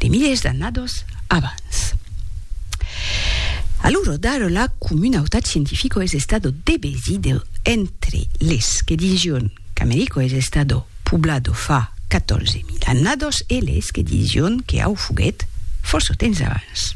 de milers d'annados abans. A l'ora d'ara la comunautat scientifica es estado debesida entre les que dision qu'America es estado poblado fa 14.000 annados e les que dision que au foguèt fòrça temps abans.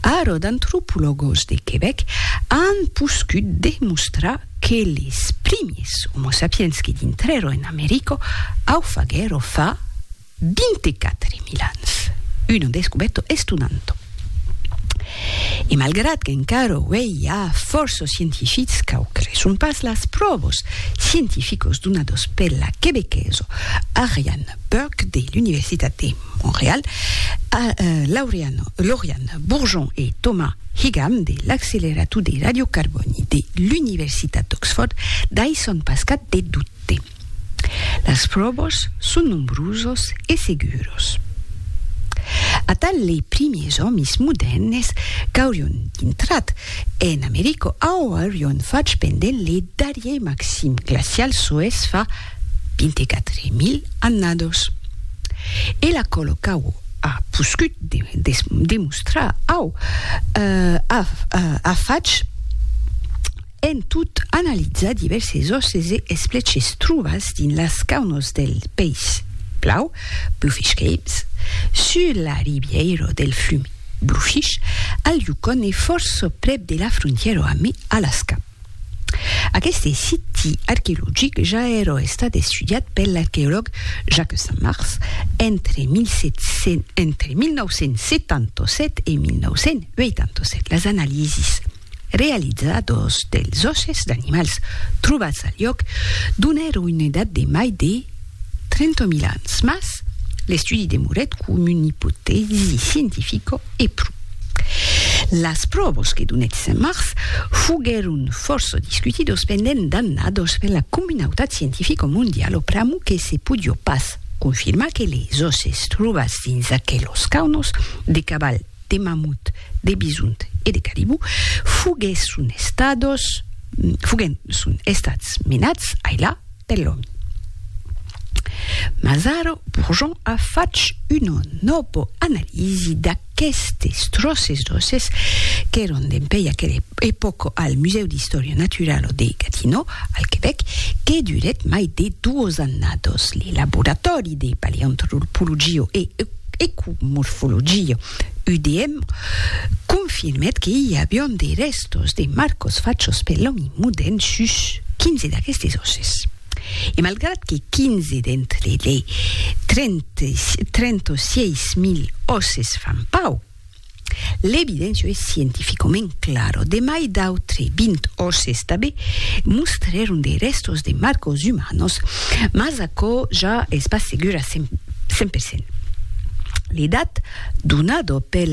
Ara d'antropologos de Quebec an poscut demostrar que les primiers Homo sapiens que dintrèron en America au faguèro fa Dins de quatre mil ans, una descubèrta estonanta. E malgrat qu'encara uèi i a fòrça scientifics qu'au creson pas las pròvas scientificas donadas per la quebequesa Ariane Burke de l'Universitat de Montreal, Lauriane Bourgeon e Thomas Higham de l'accelerator de radiocarbòni de l'Universitat d'Oxfòrd daisson pas cap de dubte. Las pròvas son nombrosas e seguras. Atal lei primiers òmis modèrnes qu'aurion dintrat en America auerion fach pendent lei darrier maxim glacial soes fa 24.000 annadas. E la còla qu'au a poscut demostrar au a fach En tot analizar divèrses òsses e espleches trobats dins las caunos del Peis Blau, Bluefish Caves, sus la ribièira del flum Bluefish, al Yukon e fòrça prèp de la frontièra amb Alaska. Aqueste siti arqueologic ja èra estat estudiat per l'arqueològ Jacques Saint-Mars entre 1977 e 1987. Las analisis. Realizadors dels òsses d'animals trobats al lhòc donèron una edat de mai de 30.000 ans, mas l'estudi demorèt coma una ipotèsi scientifica e pro. Las pròvas que donèt Saint-Mars foguèron fòrça discutidas pendent d'annadas per la comunautat scientifica mondiala pr'amor que se podiá pas confirmar que les òsses trobats dins aquelas caunas de caval de mamut, de bisont e de caribú foguèsson estados foguèsson estats menats ailà per l'òmi. Mas ara Bourgeon a fach una nòva analisi d'aquestes tròces d'òsses qu'èron dempuèi aquela epòca al Musèu d'Istòria Naturala de Gatineau, al Quebèc, que durèt mai de duas annadas. Lo Laboratòri de Paleantropologia e Ecomorfologia, UDM, confirmèt que i avián de rèstos de marcos fachos per l'òmi modèrn sus 15 d'aquestes òsses. E malgrat que 15 d'entre lei 36.000 òsses fan pauc, L'evidencio es scientificoment claro, de mai d'autre 20 òsses tabé mostrèron de rèstos de marcos umanos, mas aquò ja es pas segur a 100%. L'edat donado pel